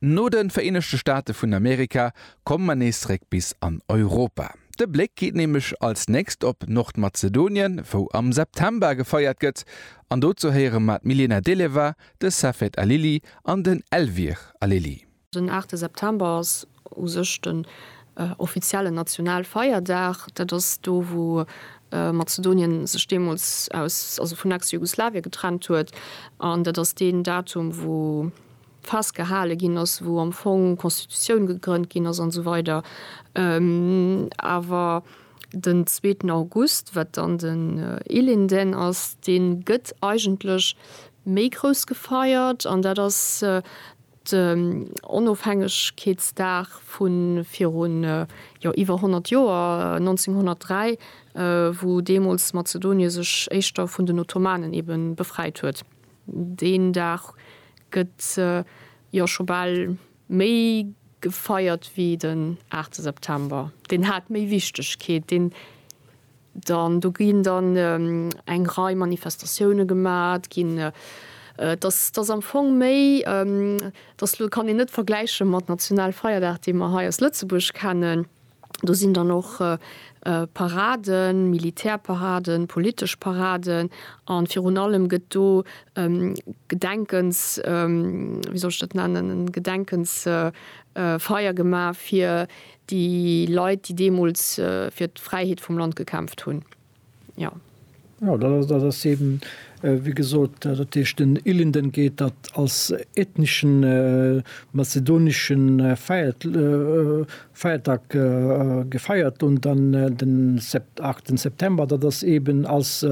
No de Vereenegte Staate vun Amerika komme mer nees zeréck bis an Europa. De Bléck geet nämlech als nächst op Nordmazedonien, wou am September gefeiert gëtt. An dozou héiere mer d'Milena Deleva, de Safet Alili an den Elvir Alili. Den aachte September ass u sech den offiziellen Nationalfeierdag. Dat ass do, wou Mazedonien sech deemools aus, also vun Ex-Jugoslawien getrennt huet. An dat ass deen Datum, wou. festgehale ginn ass, wou am Fong d'Constitutioun gegrënnt ginn ass an esou weider, awer den zweeten August, wat dann den Ilinden ass, dee gëtt eigentlech méi grouss gefeiert an dat ass den Onofhängegkeetsdag vu virun, jo iwwer 100 Joer, 1903, wou deemools Mazedonie sech éischter vun den Ottomanen ebe befreit huet. Deen Dag gëtt jo scho bal méi gefeiert wéi den aachte September. Deen hat méi Wichtegkeet. Deen dann, do ginn dann eng Rei Manifestatioune gemat ginn. Et ass, et ass am Fong méi, et ass, elo kann een net vergläiche mat Nationalfeierdag, dee mer hei aus Lëtzebuerg kennen. Do sinn dann och Paraden, Militärparaden, politesch Paraden a virun allem gëtt do e Gedenkens, wéi soll ech dat nennen, e Gedenkensfeier gemaach fir déi Leit, déi deemools fir d'Fräiheet vum Land gekämpft hunn. Jo. Jo, dat ass eben, wéi gesot, dat heescht den Ilinden geet dat als ethneschen mazedonesche Feierdag gefeiert un, dann den 8 September, dat ass eben als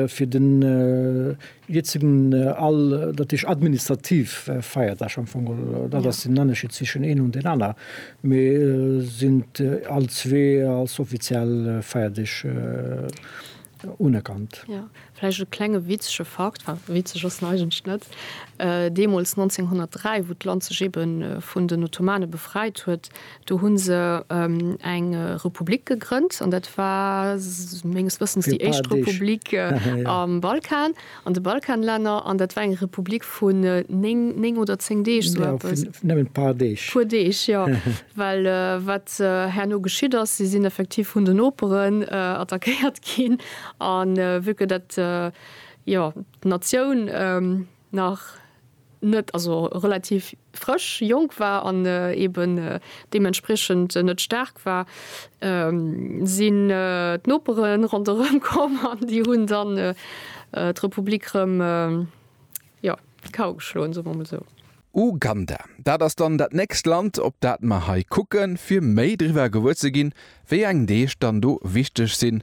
fir den Hie sinn all, dat heescht administrativ Feierdag am Fong, dat ass den Ënnerscheed zwëschen een un deen aner, mee sinn all zwee als offiziell Feierdeeg unerkannt. Jo, vläicht e klenge witzege Fakt, enfin witzeg ass en eigentlech net, deemools 1903, wou d'Land sech eebe vun den Ottomane befreit huet, Do hu se eng Republik gegrënnt an dat war menges Wëssens déi éischt Republik am Balkan, an de Balkanlänner, an dat war eng Republik vun néng oder zéng Deeg, esou eppes. Nëmmen e puer Deeg. Puer Deeg, jo. Well wat herno geschitt ass, si sinn effektiv vun den Noperen attackéiert ginn a vu que dat, jo, d'Natioun, nach net, also relativ frësch, jonk war an eben deementspriechend net staark war, sinn d'Nopere ronderëm komm an déi hunn dann d'Republik rëm, jo, d'Kau geschloen, soe mer emol esou. Uganda, dat ass dann dat nächst Land, op dat mer hei kucken, fir méi driwwer gewuer ze ginn, wéi eng Deeg dann do wichteg sinn.